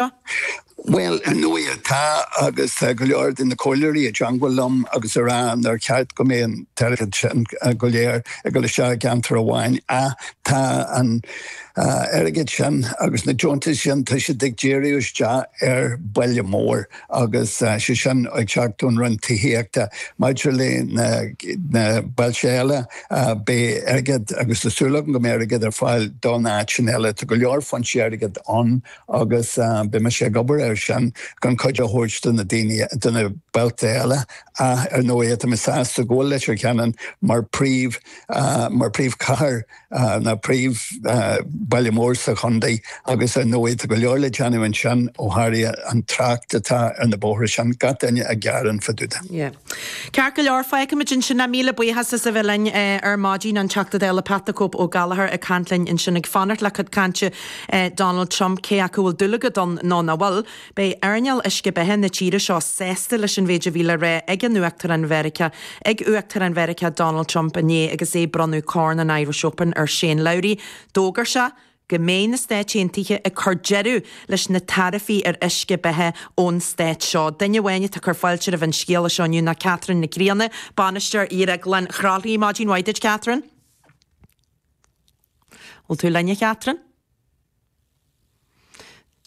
Bhuel, ar ndóigh tá, agus tá go leor de na comhairleoirí i dteangmhail liom agus a rá nár cheart go mbeadh an t-airgead sin go léir ag dul isteach i gceantar amháin ach tá an t-airgead sin agus na deontais sin, tá siad ag díriú isteach ar bhaile mór agus sé sin ag teacht ón Roinn Tithíochta. Maidir le na bailte eile beidh airgead, agus tá súil agam go mbeidh airgead ar fáil don áiteanna eile. Tá go leor foinsí airgid ann. agus beidh mise ag obair air sin chun cuid a thabhairt do na daoine, do na bailte eile ach, ar ndóigh, tá mé sásta go bhfuil Leitir Ceanainn mar phríomh, mar phríomhchathair nó príomhbhaile mór sa chontae agus, ar ndóigh, tá go leor le déanamh ansin ó tharla an trácht atá ar na bóithre sin, gach duine ag gearán fá dtaobh de. Yeah. Ceart go leor, fágfaimid ansin é míle buíochas as a bheith linn ar maidin, an Teachta Dála Pat the Cope Ó Gallchóir ag caint linn ansin, ag fanacht le cuid cainte Donald Trump cé acu a bhfuil dúil agat ann nó nach bhfuil, beidh earnáil uisce beatha na tíre seo sásta leis an mhéid a bhí le rá ag an Uachtarán Mheiriceá ag Uachtarán Mheiriceá Donald Trump inné agus é ag bronnadh Corn an Irish Open ar Shane Lowry. D'fhógair sé go mbeidh na Stáit Aontaithe ag cur deireadh leis na taraifí ar uisce beatha ón Stát seo. Duine amháin atá ag cur fáilte roimh an scéala seo inniu ná Catherine Nic Grianna, Bainisteoir Dhrioglann Chroithlí. Maidin mhaith duit, Catherine. Bhfuil tú linn, a Chatherine?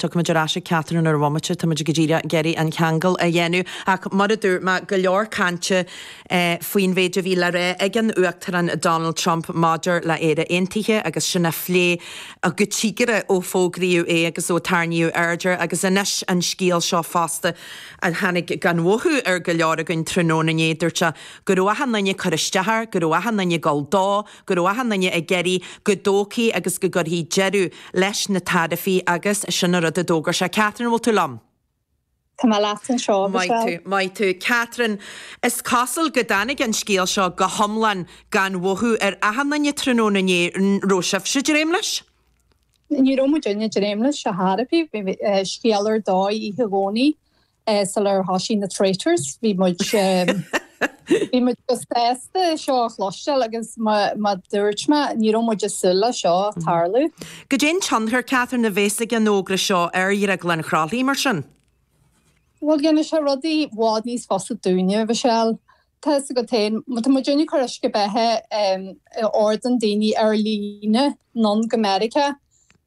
Tiocfaimid ar ais ag Catherine ar ais i mbomaite, táimid go díreach ag iarraidh an ceangal a dhéanamh ach mar a dúirt mé, go leor cainte faoin mhéid a bhí le rá ag an Uachtarán Donald Trump maidir le Éire Aontaithe agus sin á phlé go dtí go raibh ó fógraíodh é agus ó tarraingíodh aird air agus anois an scéal seo fosta a tháinig gan mhothú ar go leor againn tráthnóna inné, dúirt sé go raibh achan duine ag cur isteach air, go raibh achan duine ag gabháil dó. go raibh achan duine ag iarraidh go dtógfaí agus go gcuirfí deireadh leis na taraifí agus sin an rud a d'fhógair sé. Catherine, an bhfuil tú liom? Tá mé leat anseo, Maith tú, Michelle. maith tú. Catherine, Is cosúil go dtáinig an scéal seo go hiomlán gan mhothú ar achan duine tráthnóna inné, an raibh sibhse ag dréim leis? Ní raibh muid uile dréim leis, a Tharaifí, bhí scéal ar dóigh oíche Dhomhnaigh sular thoisigh na traitors bhí muid bhí muid go sásta é seo a chloisteáil agus mar a dúirt mé ní raibh muid ag súil le seo a tarlú. Goidé an tionchar Catherine a bhéas ag an fhógra seo ar Dhrioglann Chroithlí mar sin? Bhuel ghéanfaidh sé rudaí bhfad níos fusa dúinne, Mhichelle. Tá fhios agat féin, má tá muidinne ag cur uisce beatha a ordaíonn daoine ar líne anonn go Meiriceá,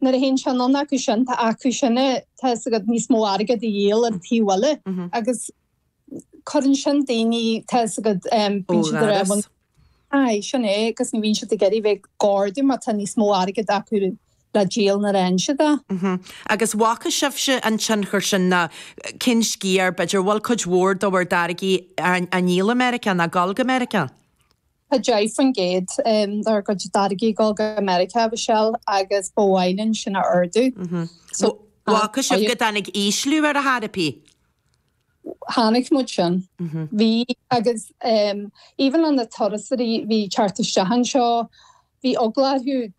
nuair a théann sé anonn acu sin, tá acusan, tá fhios agat, níos mó airgid a dhíol ar an taobh eile agus cuireann sin daoine, tá fhios agat, bíonn siad ar aon, aye, sin é, agus ní bhíonn siad ag iarraidh bheith ag ordú má tá níos mó airgid acu le díol na réimse de. Agus bhfaca sibhse an tionchar sin nó cén sciar, b'fhéidir, bhfuil cuid mhór de bhur dtáirgí á ndíol i Meiriceá nó ag dul go Meiriceá? 10% dár gcuid táirgí ag dul go Meiriceá, a Mhichelle, agus ba mhaith linn sin a ardú. Bhfaca sibh go dtáinig ísliú air dá thairbhe? chonaic muid sin. Bhí, agus even na turasóirí a bhí ag teacht isteach anseo, bhí eagla orthu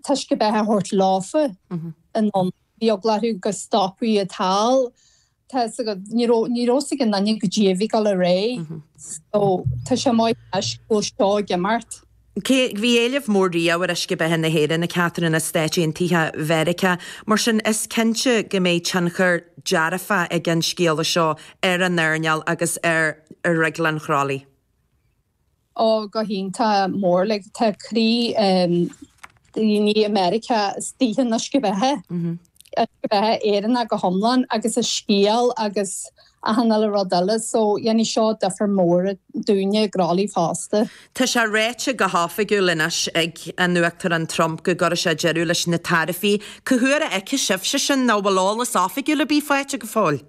uisce beatha a thabhairt leofa anonn, bhí eagla orthu go stopfaí iad thall, tá a fhios agat, ní raibh, ní raibh a fhios ag aon duine goidé a bhí ag dul ar aghaidh. So, tá sé maith anois go bhfuil seo ag imeacht. Cé go bhí éileamh mór riamh ar Uisce Beatha na hÉireann go háirithe sna Stáit Aontaithe Mheiriceá, mar sin, is cinnte go mbeidh tionchar dearfa ag an scéala seo ar an earnáil agus ar dhrioglann Chroithlí. Ó, go hiontach, mór, like, tá croí daoine i Meiriceá istigh in Uisce Beatha, Uisce Beatha Éireannach go hiomlán agus a scéal agus, Achan uile rud eile. So dhéanfaidh seo difear mór dúinne i gCroithlí fosta. Tá sé ráite go hoifigiúil anois ag an Uachtarán Trump go gcuirfidh sé deireadh leis na taraifí. Cá huair a fheicfidh sibhse sin nó bhfuil eolas oifigiúil ar bith faighte go fóill?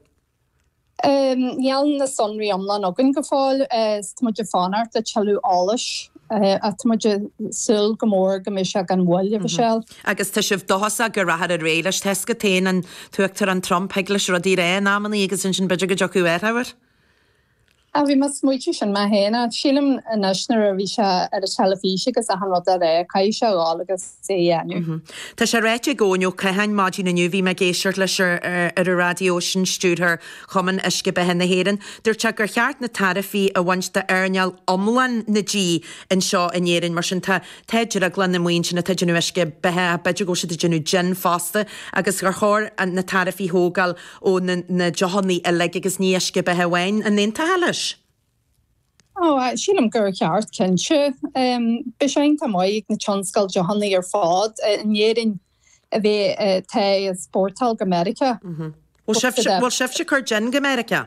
Níl na sonraí iomlán againn go fóill is tá muid ag fanacht le tuilleadh eolais ach tá muid ag súil go mór go mbeidh sé gan mhoill, a Mhichelle. Agus tá sibh dóchasach go rachfar ar aghaidh leis? Tá a fhios agat féin an tUachtarán Trump thig leis rudaí a rá in amannaí agus ansin b'fhéidir go dtiocfadh athrú air. Á, bhí mé ag smaoitiú sin mé féin ach sílim anois nuair a bhí sé ar an teilifís agus achan rud dá rá, caithfidh sé a dhul agus é a dhéanamh. Tá sé ráite ag Eoin Ó Catháin maidin inniu, bhí mé ag éisteacht leis ar ar an raidió, sin stiúrthóir Chumann Uisce Beatha na hÉireann, dúirt sé gur cheart na taraifí a bhaint d'earnáil iomlán na dí anseo in Éirinn mar sin tá Tá drioglanna amuigh ansin atá ag déanamh uisce beatha ach b'fhéidir go bhfuil siad ag déanamh jin fosta agus gur chóir na taraifí a thógáil ó na deochannaí uilig agus ní uisce beatha amháin. An aontófá leis? Ó, sílim gur cheart, cinnte. Beidh sé iontach maith ag na tionscail deochannaí ar fad in Éirinn a bheith ábalta exportáil go Meiriceá. Bhfuil sibhse ag cur jin go Meiriceá?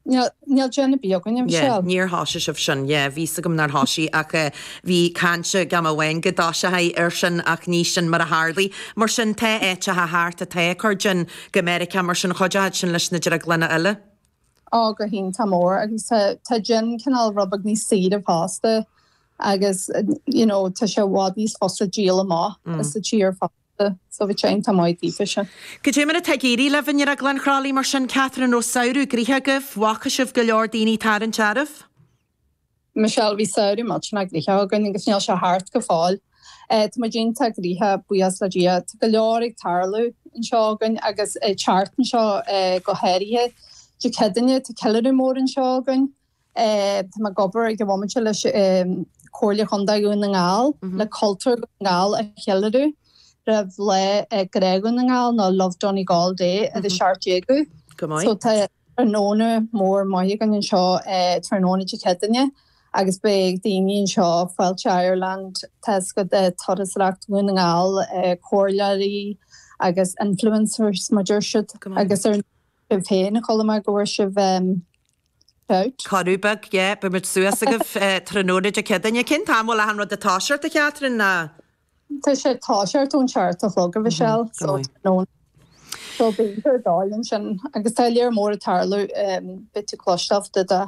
Níl jin ar bith againn, a Mhichelle. Níor thosaigh sibh sin. Yeah, bhí a fhios agam nár thosaigh ach eh, bhí caint ag am amháin go dtosófaí air sin ach ní sin mar a tharlaigh. Mar sin tá áiteacha thart atá ag cur jin go Meiriceá mar sin chuideodh sin leis na drioglanna eile. Ó, go hiontach mór agus tá jin cineál rud beag níos saoire fosta agus you know tá sé i bhfad níos fusa díol amach as sa tír fosta. Sa bhitseáin tá maíomh díograise. Goidé mar atá ag éirí libh i nDrioglann Chroithlí mar sin, Catherine an raibh samhradh gnoitheach agaibh, bhfaca sibh go leor daoine ag tarraingt oraibh? Michelle, Bhí samhradh millteanach gnoitheach againn agus níl sé thart go fóill. Tá muid iontach gnoitheach, buíochas le Dia. Tá go leor ag tarlú anseo againn agus thart anseo go háirithe. Dé Céadaoine tá ceiliúradh mór anseo againn. Tá muid ag obair ag an bhomaite leis an Chomhairle Chontae Dhún na nGall le cultúr Dhún na nGall a cheiliúradh roimh lá Grá Dhún na nGall nó Love Donegal Day ar an 17ú. Go maith. So tá tráthnóna mór maith againn anseo tráthnóna Dé Céadaoine agus beidh daoine anseo, Fáilte Ireland, Taisce Turasóireacht Dhún na nGall, comhairleoirí agus influencers mar deir siad agus ar an. Sibh féin a Choilm ag bhur sibh shout. Corru beag, yeah, beidh muid suas agaibh tráthnóna Dé Céadaoine. Cén t-am a bhfuil achan rud ag toiseacht, a Catherine, ná? Tá sé ag toiseacht ón seacht a chlog, a Mhichelle, so tráthnóna. So bíonn tú ar d'fháil ansin agus tá lear mór ag tarlú, beidh tú cloisteáil de do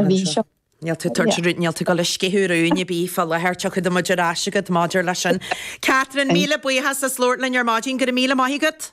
mhí seo. Níl tú ag tabhairt, níl tú ag dul a sceitheadh rúin ar bith fá láthair, tiocfaidh muid ar ais agat maidir leis sin. Catherine, míle buíochas as labhairt linn ar maidin, go raibh míle maith agat.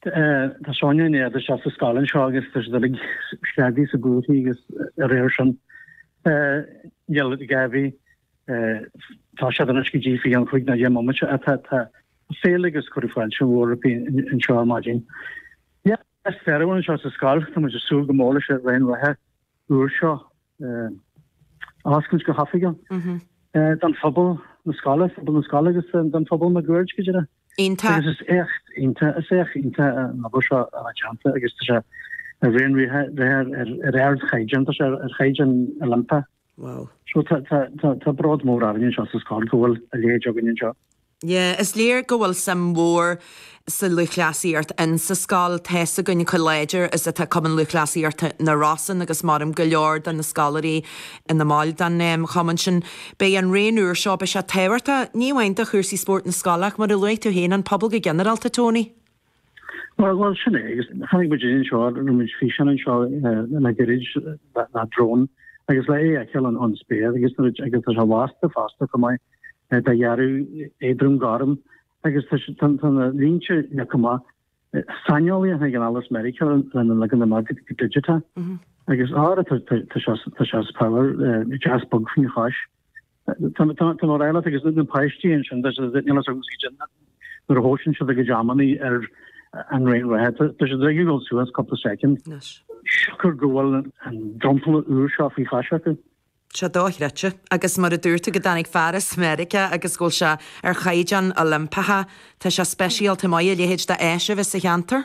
Tá Sonia i ndéidh theacht isteach sa scoil anseo agus tá siad uilig screadaí sa gcúrsaí agus ar air sin níl ag éirí tá siad anois go dtí faoi cheann chúig nó deich mbomaite a tá féile agus cuireadh fáilte mhór roimpi anseo ar maidin. Is fearr a bhfuil anseo sa scoil tá muid ag súil go mór leis an raon reatha úr seo. a oscailt go hoifigiúil don phobal na scoile, phobal na scoile agus don phobal máguaird go díreach. Iontach. Agus is éacht iontach, is éacht iontach an obair seo atá déanta agus tá sé an raon reatha ar ardchaighdeán, tá sé ar chaighdeán Oilimpeach. Wow. So tá bród mór orainn anseo sa scoil go bhfuil a leithéid againn anseo. Yeah, is léir go bhfuil suim mhór sa lúthchleasaíocht in sa scoil. Tá's againn chomh láidir is atá Cumann Lúthchleasaíochta na Rosann agus maireann go leor de na scoláirí ina mbaill den chumann sin. Beidh an raon úr seo, beidh sé tábhachtach, ní amháin do chúrsaí spóirt na scoile ach mar a luaigh tú féin, an pobal go ginearálta, Tony. Bhuel, bhuel, sin é, agus chonaic muid é anseo, rinne muid físeán anseo le gairid, le drón, agus le é a fheiceáil ón, ón spéir, agus nuair a agus tá sé lasta fosta chomh maith eh, de dhearadh éadrom gorm, agus tá sé- tá tá na línte leagtha amach eh, saineolaí a tháinig anall as Meiriceá lena leagan amach go digiteach, agus ára tá tá- tá sé tá sé as power, eh, deas bog faoin chois. Tá muid uilig agus na páistí ansin tá sé níl as agus idir nuair a thoisíonn siad ag a dreamannaí ar an raon reatha tá sé dréigí dul suas cúpla soicind. Siocair go bhfuil an dromchla úr seo faoi chois acu. Tá sé dochreidte. Agus mar a dúirt tú go dtáinig fear as Meiriceá agus go bhfuil sé ar chaighdeán Oilimpeach tá sé speisialta maith a leithéid de áiseanna sa cheantar.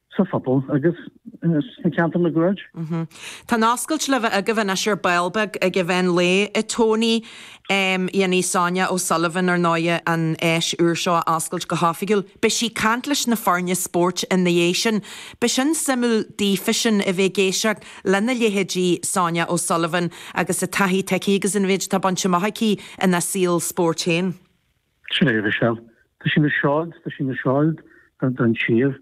sa phobal agus sna ceantair máguaird. Tá an oscailt le bheith agaibh anois ar ball beag ag an mheán lae i Tony. Dhéanfaidh Sonia O Sullivan, ar ndóighe, an áis úr seo a oscailt go hoifigiúil. Beidh sí ag caint leis na foirne spóirt ina dhiaidh sin. Beidh sin suimiúil daoifisean a bheith ag éisteacht lena leithéidí Sonia O Sullivan agus a taithí atá aici agus an mhéid atá bainte amach aici ina saol spóirt féin. Sin é, tá sí ina seoid, tá sí ina seoid don tír.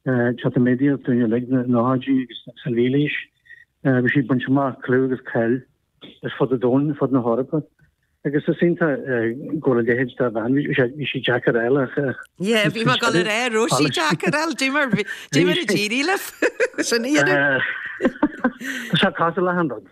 Tá cuimhne againn uilig na hócáidí agus sa mhílaois. Bhí sí bainte amach clú agus cáil ar fud an domhain, ar fud na hEorpa. Agus is iontach go bhfuil a leithéid de bhean, bhí sí deacair eile ach. Yé, bhí mar go le ró sí deacair eile, dí mar dí mar a tíí le sin í. Tá sé caiite le handad.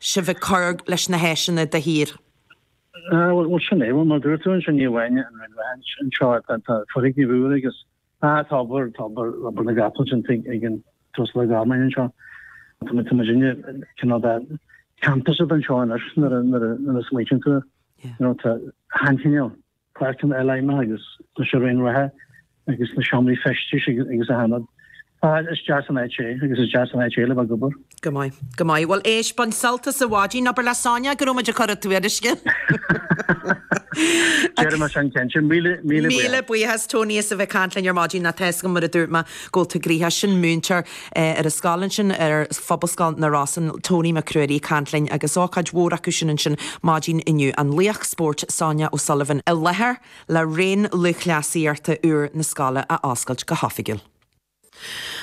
sibh ag cur leis na háiseanna de shíor? Bhuel, sin é, mar a dúirt tú ansin, ní amháin an raon reatha seo ach tá foirgnimh úra agus tá obair, tá obair, obair na gcapall déanta ag an tUasal Ó Gormáin anseo. Tá muid, tá muid inár gcineál de campus anseo anois nuair a, nuair a smaoiníonn tú air. Tá an-chineál. páirceanna imeartha agus na raonta reatha agus na seomraí feistis agus achan rud. Is deas an áit é agus is deas an áit é le bheith ag obair. Go maith, go maith. Bhuel éist, bain sult as an mhaidin, abair le Sonia go raibh muid ag cur a tuairisce. Déanfaidh mé sin cinnte. Míle míle buíochas. Míle buíochas Tony as a bheith ag caint linn ar maidin nó tá's agam mar a dúirt mé go bhfuil tú gnoitheach. Sin múinteoir. ar an scoil ansin ar Phobalscoil na Rosann, Tony Mac Ruairí ag caint linn agus ócáid mhór acu sin ansin maidin inniu, an laoch spóirt Sonia O'Sullivan i láthair le raon lúthchleasaíochta úr na scoile a oscailt go hoifigiúil.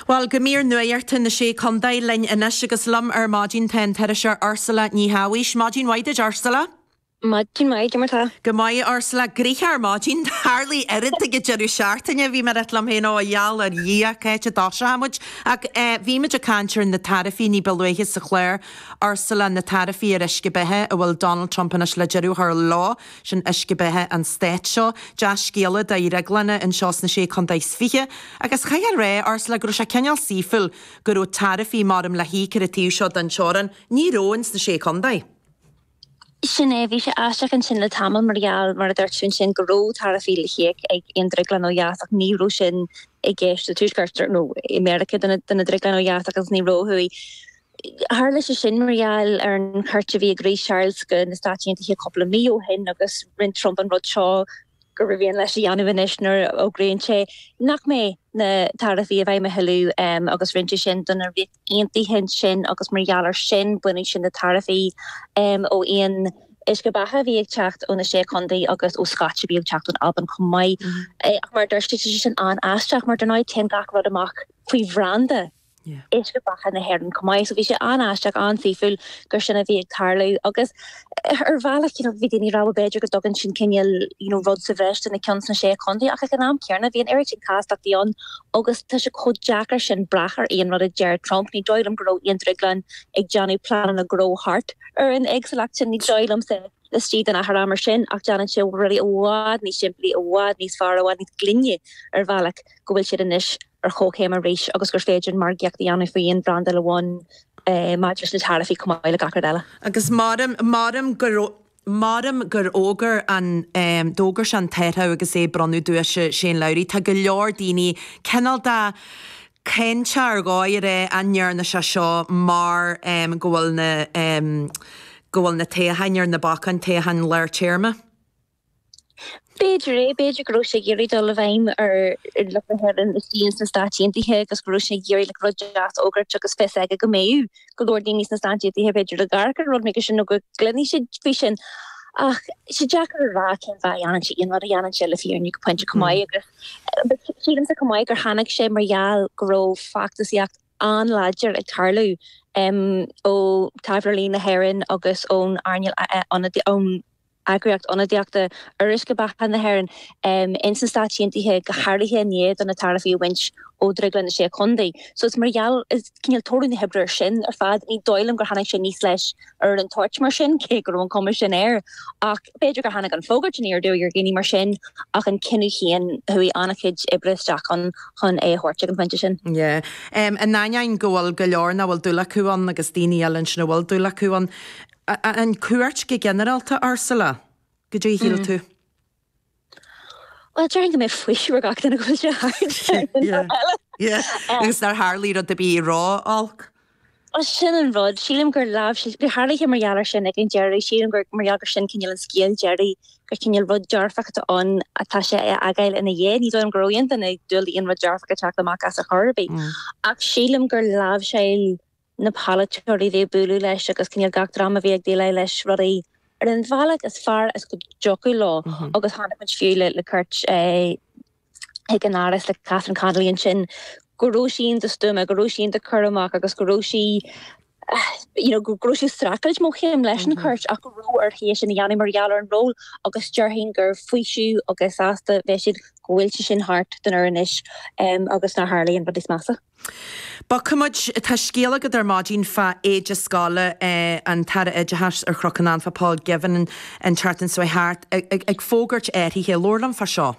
Bhuel, go mír nuachta na Sé Chontae linn anois agus liom ar maidin tá an t-iriseoir Ursula Ní Shabhaois. Maidin mhaith duit, Ursula. Maidin mhaith, cad é mar tá. Go maith, Ursula, gnoitheach ar maidin. Tharlaigh oiread ag an deireadh seachtaine, bhí mé ag ráit liom féin, ó i ngeall ar Dhia, cá háit a dtoseoidh muid? Ach eh, bhí muid ag caint ar na taraifí ní ba luaithe sa chlár, Ursula, na taraifí ar uisce beatha a bhfuil Donald Trump anois le deireadh a chur leo, sin uisce beatha an stáit seo. Dea scéala do dhrioglanna anseo sna Sé Chontae is Fiche. Agus chaithfeá a rá, Ursula, go raibh sé cineál saoithiúil go raibh taraifí maram le híoc ar an taobh seo den teorainn, ní raibh ins na Sé Chontae. Sin é. Bhí sé aisteach ansin le tamall mar gheall, mar a dúirt tú ansin, go raibh taraifí le híoc ag aon drioglann ó dheas ach ní raibh sin i gceist sa Tuaisceart nó i Meiriceá do na drioglanna ó dheas agus ní raibh ó thuaidh. Tharla sé sin mar gheall ar an chuairt a bhí ag Rí Charles go na Stáit Aontaithe cúpla mí ó shin agus rinne Trump an rud seo gur mhian leis a dhéanamh anois nuair a fhógraíonn sé nach mbeidh na taraifí i bhfeidhm a thuilleadh agus rinne sé sin don Ríocht Aontaithe ansin agus mar gheall air sin baineann siad na taraifí ó aon uisce beatha a bhí ag teacht ó na Sé Chontae agus ó scotch a bhí ag teacht ón Albain chomh maith. Ach mar a dúirt tú, tá sé sin an-aisteach mar dar ndóigh téann gach rud amach faoi bhranda uisce beatha na hÉireann chomh maith. So bhí sé an-aisteach, an-saoithiúil gur sin a bhí ag tarlú agus Ar bhealach, you know, bhí daoine ag rá b'fhéidir go dtugann sin cineál, you know, rud sa bhreis do na cinn sna Sé Chontae ach ag an am céanna bhí an oiread sin castachtaí ann agus tá sé chomh deacair sin brath ar aon rud a deir Trump. Ní dóigh liom go raibh aon drioglann ag déanamh pleananna gnó thart ar an éagsúlacht sin, ní dóigh liomsa laistigh den achar ama sin ach déanann sé rudaí i bhfad níos simplí, i bhfad níos fearr, i bhfad níos glaine ar bhealach go bhfuil siad anois ar chomhchéim arís agus gur féidir margaíocht a dhéanamh faoi aon bhrandáil amháin maidir leis na taraifí chomh maith le gach rud eile. Agus m'anam gur. M'anam gur fhógair an. d'fhógair sé an t-athrú agus é ag bronnadh duais ar Shane Lowry. Tá go leor daoine cineál de ag caint air dháiríre an ndearna sé seo mar go bhfuil na go bhfuil na toghcháin ar na bacáin, toghcháin lár téarma. B'fhéidir é, b'fhéidir go raibh sé ag iarraidh dul i bhfeidhm ar lucht na hÉireann ins na Stáit Aontaithe agus go raibh sé ag iarraidh rud deas a fhógairt agus fios aige go mbeadh go leor daoine sna Stáit Aontaithe b'fhéidir ag amharc ar rud mar sin nó go gcluinfeadh siad faoi sin ach tá sé deacair a rá cén fáth a dhéanann sé aon rud a dhéanann sé le fírinne go pointe chomh maith agus sílimse chomh maith gur tháinig sé mar gheall go raibh feachtasaíocht an-láidir ag tarlú ó thaidhleoirí na hÉireann agus ón earnáil ionadaíochta eagraíocht ionadaíochta uisce beatha na hÉireann ins na Stáit Aontaithe, go háirithe i ndiaidh do na taraifí a bhaint ó dhrioglanna na Sé Chontae. So is mar gheall, is cineál toradh na hoibre sin ar fad. Ní dóigh liom gur tháinig sé aníos leis ar an toirt mar sin, cé go raibh an cuma sin air, ach b'fhéidir gur tháinig an fógairt aniar aduaidh ar dhaoine mar sin, ach an cinneadh féin, chuaigh an-chuid oibre isteach ann chun é a thabhairt chuig an phointe sin. Yeah. In ainneoin go bhfuil go leor nach bhfuil dúil acu ann agus daoine eile ansin a bhfuil dúil acu ann, a. An cuairt go ginearálta, Ursula? Goidé a shíl tú? Bhuel, déarfainn go mbeidh faoiseamh ar gach duine go bhfuil sé thart. Agus nár tharlaigh rud ar bith ró-olc? Bhuel sin an rud, sílim gur leamh sí, bhí tharlaithe mar gheall air sin ag an deireadh, sílim gur mar gheall gur sin cineál an scéal deiridh, gur cineál rud dearfach atá ann atá sé a fhágáil ina dhiaidh, ní dóigh liom go raibh aon duine ag dúil le haon rud dearfach ag teacht amach as ar chor ar bith ach sílim gur láimhseáil na polaiteoirí a bhí ag bualadh leis agus cineál gach dream a bhí ag déileáil le rudaí ar an bhealach is fearr is go dtiocfadh leo agus chonaic muid fiú le cuairt chuig an Áras le Catherine Connolly ansin go raibh sí iontach stuama, go raibh sí iontach curtha amach agus go raibh sí you know go raibh sí ag streachailt mórchéim leis an chuairt ach go raibh uirthi é sin a dhéanamh mar gheall ar an ról agus déarfainn gur faoiseamh agus sásta a bheidh siad go bhfuil sé sin thart dáiríre anois agus nár tharla aon rud níos measa. Bogfaidh muid, tá scéal agat ar maidin fá éide scoile an tAire Oideachais ar Chnoc an Anfa, Paul Givan, an tseachtain seo thart, ag fógairt athruithe. Labhair liom fá seo.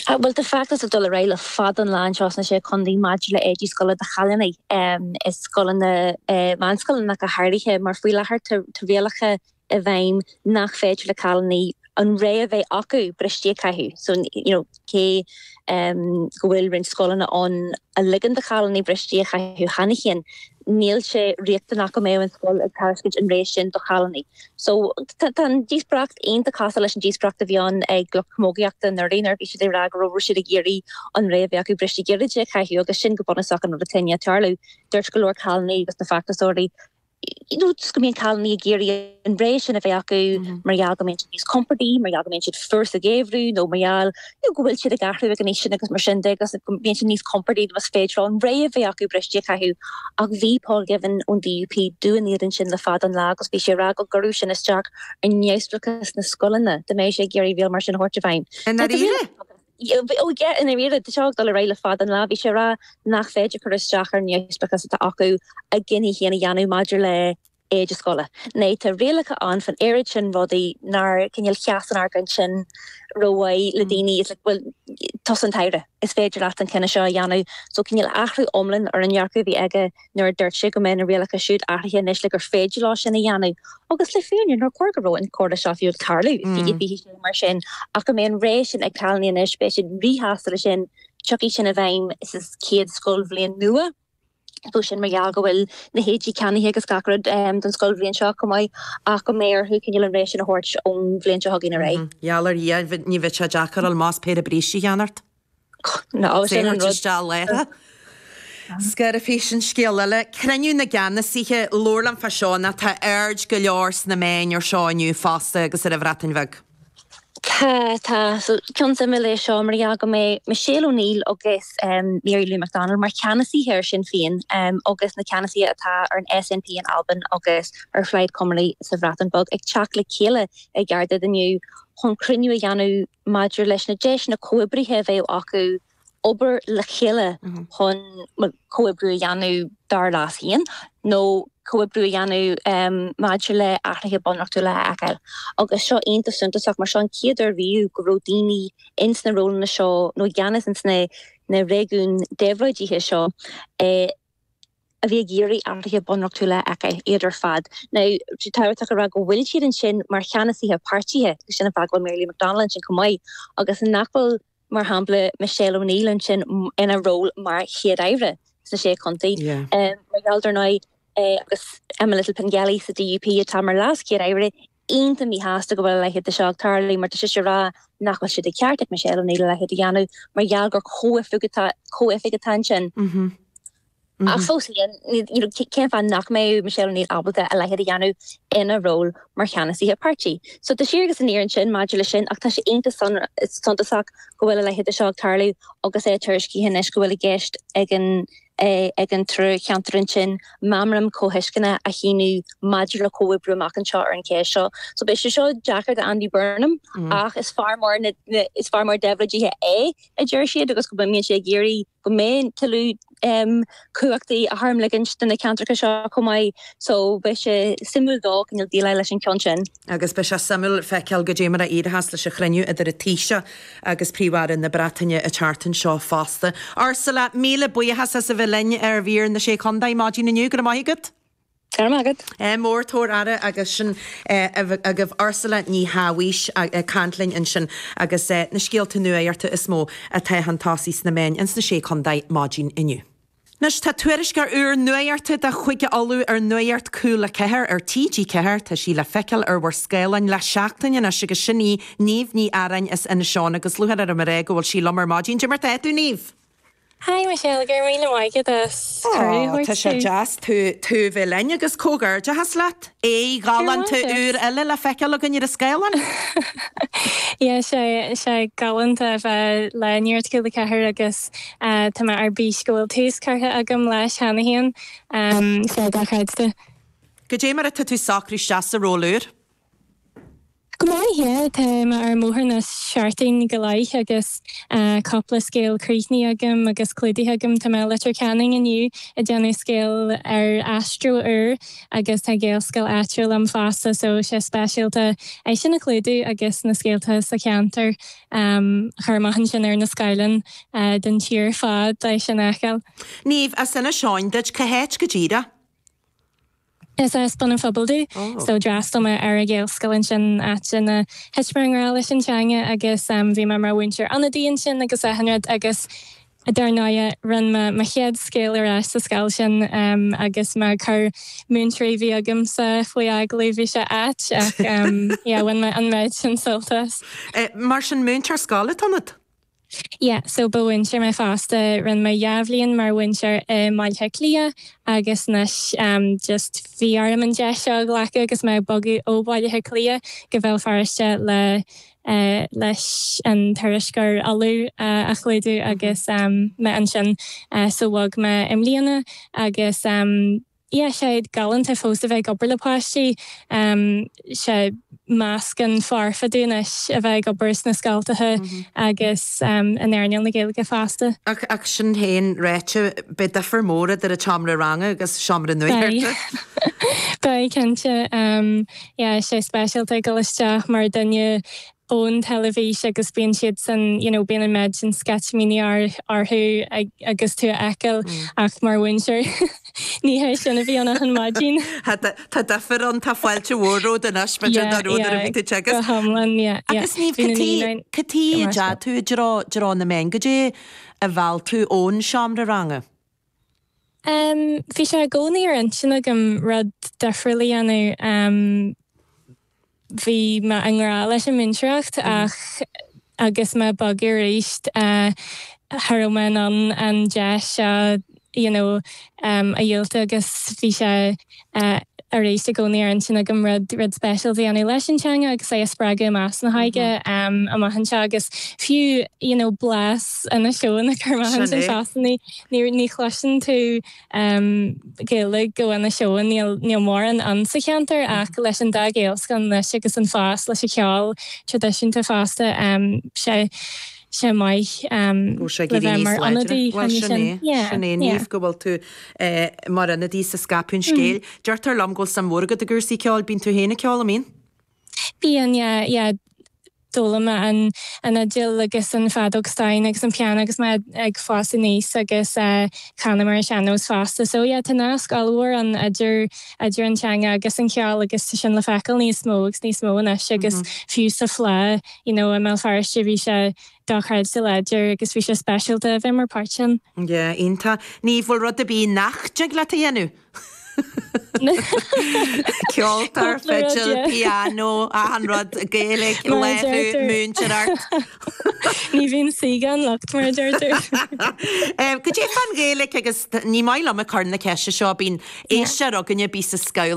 Bhuel, tá feachtas ag dul ar aghaidh le fada an lá anseo sna sé chontae maidir le éidí scoile do chailíní i scoileanna meánscoileanna ach go háirithe mar faoi láthair tá rialacha i bhfeidhm nach féidir le cailíní an rogha a bheith acu brístí a chaitheamh so you know cé go bhfuil roinnt scoileanna ann a ligeann do chailíní brístí a chaitheamh cheana féin níl sé riachtanach go mbeadh an scoil ag tairiscint an rogha sin do chailíní so tá an díospóireacht iontach cosúil leis an díospóireacht a bhí ann ag lucht camógaíochta anuraidh nuair a bhí siad ag rá go raibh siad ag iarraidh an rogha a bheith acu brístí gairide a chaitheamh agus sin go bunúsach an rud atá ag tarlú dúirt go leor cailíní agus na feachtasóirí nó go mbíonn cailíní ag iarraidh an rogha sin a bheith acu mar gheall go mbíonn siad níos compordaí, mar gheall go mbíonn siad fuar sa gheimhreadh nó mar gheall nó go bhfuil siad ag athrú ag an aois sin agus mar sin de agus go mbíonn siad níos compordaí más féidir leo an rogha a bheith acu brístí a chaitheamh. Ach bhí Paul Givan ón DUP dubh in éadan sin le fada an lá agus bhí sé ag rá go gcuirfeadh sin isteach ar neamhspleáchas na scoileanna dá mbeadh sé ag iarraidh riail mar sin a thabhairt i bhfeidhm. I ndáiríre? Ó yeah i ndáiríre, tá seo ag dul ar aghaidh le fada an lá. Bhí sé ag rá nach féidir cur isteach ar an neamhspleáchas atá acu a gcinntí féin a dhéanamh maidir le éide scoile. Now tá rialacha ann faoin oiread sin rudaí nár cineál sheas an argóint sin ró-mhaith le daoine. Is like, bhuel, tusa an tAire, is féidir leat an cinneadh seo a dhéanamh. So cineál athrú iomlán ar an ndearcadh a bhí aige. nuair a dúirt sé go mbeadh na rialacha siúd athraithe anois le gur féidir leo sin a dhéanamh, agus le fírinne nár chóir go raibh an chomhrá seo fiú ag tarlú, fiche fiche sé mar sin, ach go mbeidh an rogha sin ag cailíní anois, beidh siad ríshásta leis sin, tiocfaidh sin i bhfeidhm sa chéad scoilbhliain nua, now sin mar gheall go bhfuil na héidí ceannaithe agus gach rud don scoilbhliain seo chomh maith, ach go mbeidh orthu cineál an rogha sin a thabhairt ón bhliain seo chugainn ar aghaidh. Geall ar Dhia, ní bheidh sé deacair, más péire brístí a cheannacht. Féachaint isteach Laochra. Labhair faoi sin scéal eile, Cruinniú na gCeannasaithe, labhair liom faoi seo Tá aird go leor sna meáin air seo inniu fosta agus sa Bhreatain Bheag. Tá, tá. So, ceann suimiúil é seo mar gheall go mbeidh Michelle O'Neill agus Mary Lou McDonald mar cheannasaithe ar Shinn Féin agus na ceannasaithe atá ar an SNP in Albain agus ar Phlaid Cymru sa Bhreatain Bheag ag teacht le chéile i gCaerdydd inniu chun cruinniú a dhéanamh maidir leis na deiseanna comhoibrithe a bheadh acu obair le chéile chun comhoibriú a dhéanamh dár leas féin nó comhoibriú a dhéanamh maidir le hathruithe bunreachtúla a fheiceáil. Agus tá seo iontach suntasach mar seo an chéad uair riamh go raibh daoine ins na rólanna seo nó i gceannas ins na réigiún déabhlóidithe seo é a bhí ag iarraidh athruithe bunreachtúla acu, iad ar fad nó tá sé tábhachtach a rá go bhfuil siad ansin mar cheannasaithe páirtithe, agus sin an fáth go bhfuil Mary Lou McDonald ansin chomh maith agus nach bhfuil, mar shampla, Michelle O'Neill ansin ina ról mar Chéad-Aire sna Sé Chontae, mar gheall, dar ndóigh, agus Emma Little-Pengelly sa DUP atá mar LeasChéad-Aire, iontach míshásta go bhfuil a leithéid de seo ag tarlú mar tá sise ag ráit nach bhfuil sé de cheart ag Michelle O'Neill a leithéid a dhéanamh mar gheall gur comhoifig atá ansin. Ach fós féin, cén fáth nach mbeadh Michelle O'Neill ábalta a leithéid a dhéanamh ina ról mar cheannasaí a páirtí? So tá siar agus aniar ansin maidir leis sin ach tá sé iontach suntasach go bhfuil a leithéid de seo ag tarlú agus é tuairiscithe anois go bhfuil i gceist ag an é ag an trí cheantar ansin meamram comhthuisceana a shíniú maidir le comhoibriú amach anseo ar an cheist seo. So beidh sé seo deacair do Andy Burnham ach is fear mór na, is fear mór déabhlóidithe é, a deir siad agus go mbíonn sé ag iarraidh go mbeidh tuilleadh um, cumhachtaí a tharmligint do na ceantracha seo chomh maith. So beidh sé suimiúil dó go ndéileálfaidh leis an ceann sin. agus beidh sé suimiúil le feiceáil cad é mar a éireochas leis an chruinniú idir an Taoiseach agus Príomh-Aire na Breataine an tseachtain seo fosta. Ursula, míle buíochas as a bheith linn ar mhír na Sé Chontae maidin inniu. Go raibh maith agat. Go raibh maith agat. Mór tabhair aire agus sin agaibh Ursula Ní Shabhaois ag caint linn ansin agus na scéalta nuachta is mó atá chun tosaigh sna meáin ins na Sé Chontae maidin inniu. Anois tá tuairisceoir úr nuachta de chuige Uladh ar Nuacht Cúla Ceathair ar TG4. Tá sí le feiceáil ar bhur scáileáin le seachtain anois agus sin í Niamh Ní Earáin as Inis Eoghain agus lúcháir orm a rá go bhfuil sí liom ar maidín. Cad é mar atá tú Niamh! Hi Michelle, go raibh míle maith agat as cuireadh a thabhairt Tá sé deas tú a bheith linn agus comhghairdeachas leat! Aghaidh ghalánta úr eile le feiceáil againn ar an scáileán! Yeah tá sé galánta a bheith le Nuacht Cúla Ceathair agus Tá mé ar bís go bhfuil tús curtha agam leis cheana féin. Sea, dochreidte. Cad é mar atá tú socrú isteach sa ról úr? Go maith, yeah. Tá mé ar an mbóthar le seachtain go leith agus cupla scéal críochnaithe agam agus clúdaithe agam. Tá mé i Leitir Ceanainn inniu ag déanamh scéal ar aistriú úr agus tá sé i nGaelscoil áitiúil liom fosta so tá sé speisialta é sin a chlúdú agus na scéalta sa cheantar. Chur amach ansin ar na scáileáin don tír ar fad deas sin a fheiceáil. Niamh, as Inis Eoghain duit, cá háit go díreach? Is as Bun an Phobail domh. So d'fhreastail mé ar a' Ghaelscoil ansin, áit ina thit mé i ngrá leis an teanga agus bhí mé mar mhúinteoir ionadaí ansin agus achan rud agus Dar ndóigh, rinne me mo chéad scéal ar ais sa scoil sin agus mé ag cur múinteoirí a bhí agamsa faoi agallamh, bhí sé ait ach yeah, bhain mé an méid sin sult as. Mar sin, múinteoir scoile atá ionat? Yeah, so ba mhúinteoir mé fosta, rinne mé dhá bhliain mar mhúinteoir i mBaile Átha Cliath agus anois just bhí orm an deis seo a ghlacadh agus mé ag bogadh ó Bhaile Átha Cliath go Bhéal Feirste le leis an tuairisc ar Uladh a chlúdú agus mé ansin so bhog mé i mbliana agus yeah sé galánta fós a bheith ag obair le páistí sé meascán foirfe domh anois a bheith ag obair sna scoltacha agus in earnáil na Gaeilge fosta. Ach sin féin ráite beidh difear mór idir an tseomra ranga agus seomra nuachta. Beidh, beidh cinnte. yeah sé speisialta ag dul isteach mar dhuine ón teilifís agus bíonn siadsan you know bíonn an méid sin sceitimíní orthu agus tú a fheiceáil ach mar mhúinteoir ní hé sin a bhí ann achan maidin. Tá difear ann tá fáilte mhór romhat anois mar sin an rud a bhí tú ag teagasc. Go hiomlán yeah. Agus Niamh cad chuige a ndeachaigh tú i dtreo na meán goidé a mheall tú ón seomra ranga. Bhí sé i gcónaí ar intinn agam rud difriúil a dhéanamh. Bhí mé i ngrá leis an múinteoireacht ach agus mé ag bogadh arís cha raibh mé in ann an deis seo you know a dhiúltú agus bhí sé arís i gcónaí ar intinn agam rud, rud speisialta a dhéanamh leis an teanga agus é a spreagadh i measc na hóige amach anseo agus fiú, you know, blas Inis Eoghain a chur amach ansin fosta, ní, ní chloiseann tú Gaeilge Inis Eoghain, níl, níl mórán ann sa cheantar ach leis an dá Ghaelscoil anois agus an fás leis an cheol traidisiúnta fosta, sé, sé maith Go bhfuil sé ag le éirí bheith níos mar láidre. ionadaí Bhuel, cheana sin é. sin. Yeah, Sin é, yeah. Niamh, go bhfuil tú eh, mar ionadaí is ag scaipeadh an scéil. Deirtear liom go bhfuil suim mhór agat i gcúrsaí ceoil. Bíonn tú féin ag ceol, an mbíonn? Bíonn, yeah, yeah. D'fhoghlaim mé an, an fhidil agus an feadóg stáin agus an piano agus mé ag fás aníos agus eh, canaim ar an sean-nós fosta. So yeah, tá nasc ollmhór ann idir, idir an teanga agus an ceol agus tá sin le feiceáil níos mó agus níos mó anois agus fiú sa Fleadh you know i mBéal Feirste bhí sé dochreidte láidir agus bhí sé speisialta a bheith mar pháirt ann. Yeah, iontach. An bhfuil rud ar bith nach dtig leat a dhéanamh? Ceoltóir, fidil, pianó, achan rud, Gaeilge, léiriú, múintear art. Ní bhíonn saoi gan locht mar a deirtear. Cad é fán Ghaeilge agus ní maith liom a chur na ceise seo bíonn a fhios againne bhí sa scoil